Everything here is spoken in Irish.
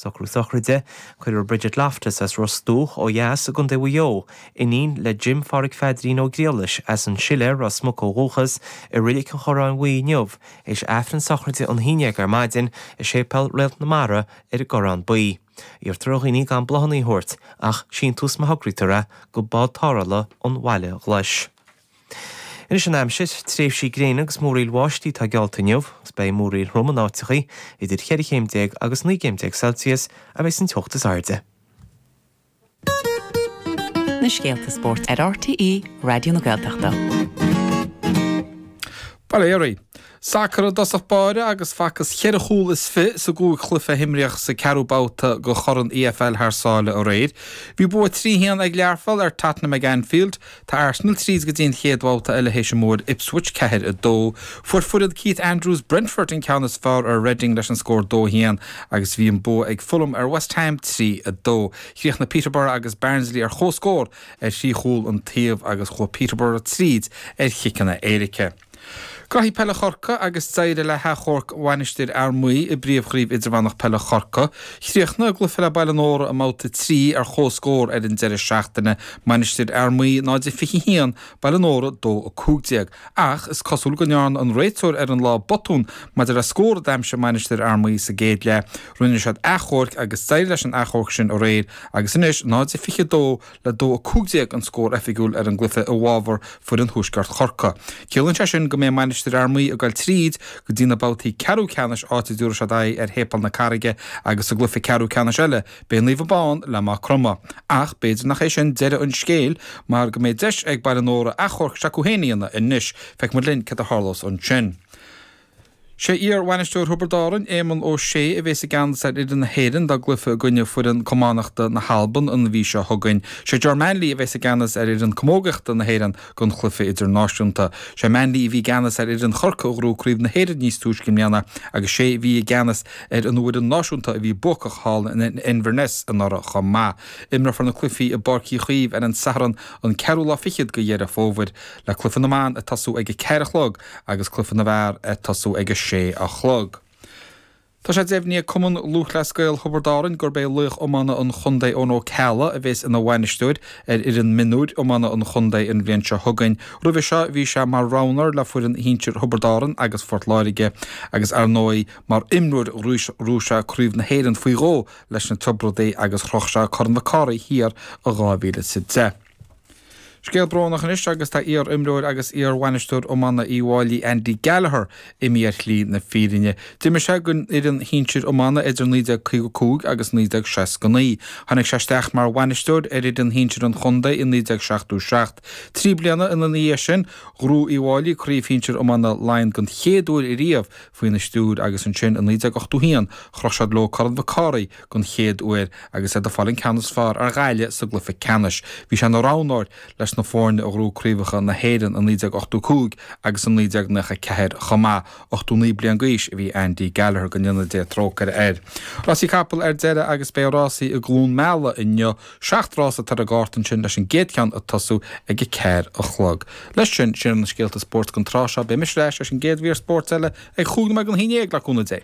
Socrú sochraide, cuirfear Bridget Loftus as Ros Dumhach ó dheas i gContae Mhaigh Eo, iníon le Jim Phádraig Phaidrín Ó Griallais, as an tSiléar, Ros Muc ó dhúchas, i Reilig an Chorráin Bhuí inniu, is Aifreann sochraide ag a haon déag ar maidin, i Séipéal Réalt na Mara ar an gCorrán Buí. Iarrtar ar dhaoine gan bláthanna a thabhairt, ach síntiús má thograítear é, go bád tarrthála ón Bhaile Ghlais. Anois an aimsir, Tréimhsí gréine agus múraíl bháistí atá geallta inniu agus beidh múraíl trom in áiteachaí, idir cheithre chéim déag agus naoi gcéim déag Celsius a bheidh san teocht is airde. na scéalta spóirt ar RTÉ Raidió na Gaeltachta. Valéry. Sacar i dtosach báire agus facthas ceithre chúl is fiche sna cúig chluiche a himríodh sa ceathrú babhta de Chorn EFL thar sáile aréir. Bhí bua trí haon ag Learpholl ar Tottenham ag Anfield. Tá Arsenal tríd go dtí an chéad bhabhta eile théis a mbua ar Ipswich, ceathair a dó. Fuair foireann Keith Andrews Brentford an ceann is fearr ar Reading leis an scór dó a haon agus bhí an bua ag Fulham ar West Ham trí a dó. Chríochnaigh Peterborough agus Barnsley ar chomhscór ar thrí chúl an taobh agus chuaigh Peterborough tríd ar chiceanna éirice. Craobh Peile Chorcaí agus d'éirigh le hachomharc Mhainistir Fhear Maí i bPríomhchraobh Idirmheánach Peile Chorcaí. Chríochnaigh a gcluiche le Baile Nóra i mBabhta 3 ar chomhscór ar an deireadh seachtaine, Mainistir Fhear Maí 0 21, Baile Nóra 2 15, ach is cosúil go ndearna an réiteoir ar an lá botún maidir le scór a d'aimsigh Mainistir Fhear Maí sa gcéad leath. Rinne siad achomharc agus d'éirigh leis an achomharc sin aréir agus anois 0 22 le dó 15 an scór oifigiúil ar an gcluiche i bhfábhar foireann Thuaisceart Chorcaí. Ciallaíonn sé sin go mbeidh Mainistir Fhear Maí ag dul tríd go dtí na babhtaí ceathrú ceannais áit a dtabharfaidh siad aghaidh ar Shéipéal na Carraige agus sa gcluiche ceathrú ceannais eile beidh Naomh Abán le Maigh Chromtha. Ach b'fhéidir nach é sin deireadh an scéil mar go mbeidh deis ag Baile Nóra achomharc s'acu féin a dhéanamh anois. Feicfimid linn céard a tharlós ansin. Sé iar-bhainisteoir Thiobraid Árann, Éamonn Ó Sé, a bhéas i gceannas ar fhoireann na hÉireann dá gcluiche i gcoinne foireann camánachta na hAlban an mhí seo chugainn. Sé Ger Manley a bhéas i gceannas ar fhoireann camógaíochta na hÉireann don chluiche idirnáisiúnta. Sé Manley a bhí i gceannas ar fhoireann Chorcaí a ghnóthaigh craobh na hÉireann níos túisce i mbliana agus sé a bhí i gceannas ar an bhfoireann náisiúnta a bhí buacach thall in Inverness anuraidh chomh maith. Imreofar na cluichí i bPáirc Uí Chaoimh ar an Satharn an ceathrú lá fichead de Dheireadh Fómhair, le cluiche na mban ag tosú ag a ceathair a chlog. agus Cluiche na bhFear ag tosú ag a sé a chlog. Tá sé deimhnithe ag Cumann Lúthchleas Gael Thiobraid Árann gurb é laoch iomána an chontae Eoin Ó Ceallaigh a bhéas ina bhainisteoir ar fhoireann mionúir iomána an chontae an bhliain seo chugainn. Roimhe seo bhí sé mar roghnoir le foireann shinsir Thiobraid Árann agus Phort Láirge agus ar ndóigh mar imreoir ghnóthaigh sé Craobh na hÉireann faoi dhó leis na Tiobraidigh agus chroch sé Corn Mhic Cárthaigh thiar i 2010. Scéal brónach anois agus tá iar-imreoir agus iar-bhainisteoir iomána Uíbh Fhailí, Andy Gallagher, imithe ar shlí na fírinne. D'imir sé don fhoireann shinsir iomána idir 1955 agus 1969. Tháinig sé isteach mar bhainisteoir ar fhoireann shinsir an chontae i 1977. Trí bliana ina dhiaidh sin, ghnóthaigh Uíbh Fhailí craobh shinsir iomána Laighean den chéad uair riamh, faoina stiúir agus ansin i 1981 chroch siad leo Corn Mhic Cárthaigh den chéad uair agus iad ag fáil an ceann is fearr ar Ghaillimh sa gcluiche ceannais. Bhí sé ina roghnóir leis na foirne a ghnóthaigh Craobhacha na hÉireann i 1985 agus i 1994 chomh maith. 89 bliain d'aois a bhí Andy Gallagher, go ndéana Dia trócaire air. Rásaí capall ar deireadh agus beidh rásaí i gCluain Meala inniu. Seacht rás atá ar an gcárta ansin leis an gcéad cheann ag tosú ag a ceathair a chlog. Leis sin, sin iad na scéalta spóirt don tráth seo. Beidh mise ar ais leis an gcéad mhír spóirt eile ag cúig nóiméad don haon déag le cúnamh Dé.